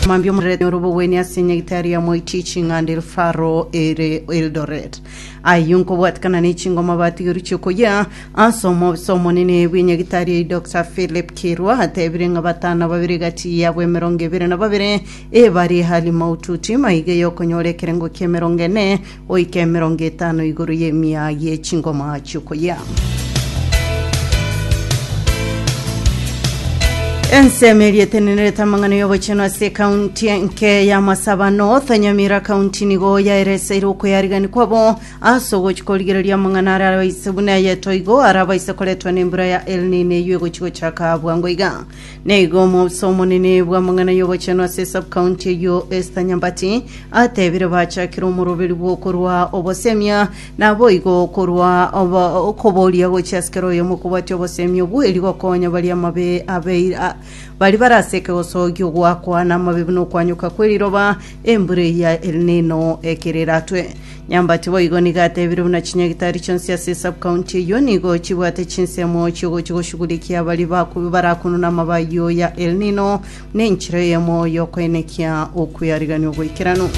Mambia omorerete ore obogwenia ase nyagitari ya Moiti ching'anda el Faro ere Eldoret. Ayio nkobwatikana ne chingoma batigeru chiokoyia ase omobisa omonene bw'enyagitari eye Dr. Philip Kirwa atebire ng'a batano babere gati yabo emerongo ebere na babere ebare hali maututi maiga yokonyora ekerengo ki'emerongo ene Goika emerongo etano igoro y'emia ye chingoma chi'okoyia. Ensemo eria etenenerete amang'ana y'obochenu ase ekaunti enke ya Masabano, Tonyamira County nigo yaereseire okoyarigania kwabo ase ogochia korigereria amang'ana aria abaise buna eye toigo ara abaise koretwa nembura ya El Nino eyio egochia gochaka bwango iga. Naigo omoofisa omonene bw'amang'ana y'ogochenu ase subcounty eyio Esther Nyambati atebire bachakire omoroberi bw'okorwa obosemia naboigo okorwa obo- okoboria gochia ase kera oyomo kobwatia obosemia obweri gokonya baria amabe abeire a- bari bare ase ekegoso gi'ogwakwa namabe buna okwanyoka kw'eriroba embura eya El Nino ekero eratwe Nyambati boigo nigo atebire buna chinyagitari chionsi ase esub-county eyio nigo chibwate chinsemo chiogochia goshugurikia baria baku- barakununa amaba ayio ya El Nino na enchera eyemo y'okoenekia okweriganwa ogoikeranu.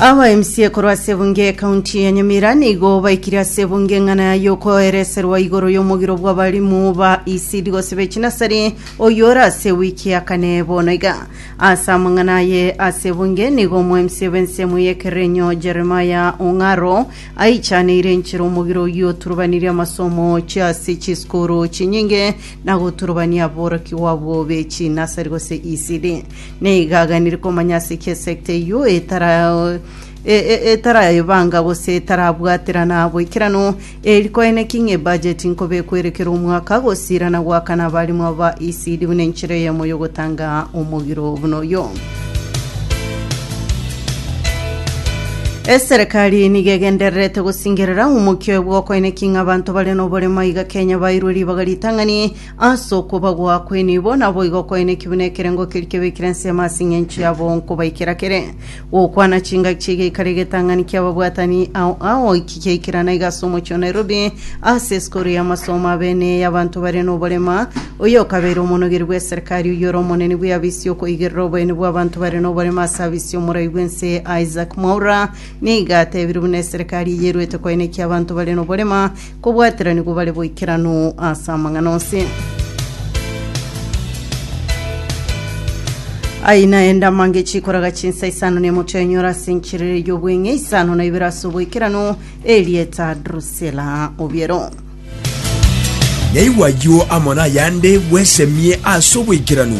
Aba MCA korwa ase ebunge ekaunti ya Nyamira nigo baikire ase ebunge eng'ana ya yokoereserwa igoro y'omogiro bw'abarimu ba ECD gose b'echinasari oyio ore ase wiki ya kane bono iga. Ase amang'ana aye ase ebunge nigo omwemisia bw'ensemo y'ekerenyo Jeremia Ong'aro aichaneire enchera omogire oyio oturubanirie amasomo ochia ase chisukuru chinyinge na goturubania aborokigwa abwo be chinasari gose ECD. Nigo aganire komanya ase ki esecta eyio etara e- e- etarayebanga gose etarabwaterana boikeranu Eri kwaene ki ng'e bajeti nkobekwa ere kera omwaka, gosiirana goakana abaarimo aba ECD buna enchera eyemo y'ogotanga omogiro buna oyo. Eserekari nigo egendererete gosingerera omokio bw'okoine ki ng'a abanto bare noboremo iga Kenya bairwe ribaga ritang'ani ase okwobagwa kw'enibo, naboigo okoine ki buna ekerengo keri kebekire ensemo ase eng'encho yabo nkobaikera kere. Gokwana chingaki chi'egeikaro egetang'ani ki'ababwatani ao ao eki kiaikerana iga ase omochie o Nairobi ase esukuru y'amasomo abene y'abanto bare noborema. Oyo okabeire omonogeri bw'eserekari oyio ore omonene bw'eafisi y'okoigerera oboyeni bw'abanto bare noborema ase afisi y'omorai bw'ense Isaac Mwaura nigo atebirie buna eserekari eye eruete koenekia abanto bare noborema Kobwateranigwa bare boikeranu ase amang'ana onsi. Ayio naende amange chikoraga chinsa isano na emotwe enyora ase enchiriri y'obweng'e isano na ibere ase oboikeranu, erieta Drusila obiero. Yaigwa ayio amo nayande bwesemie ase oboikeranu.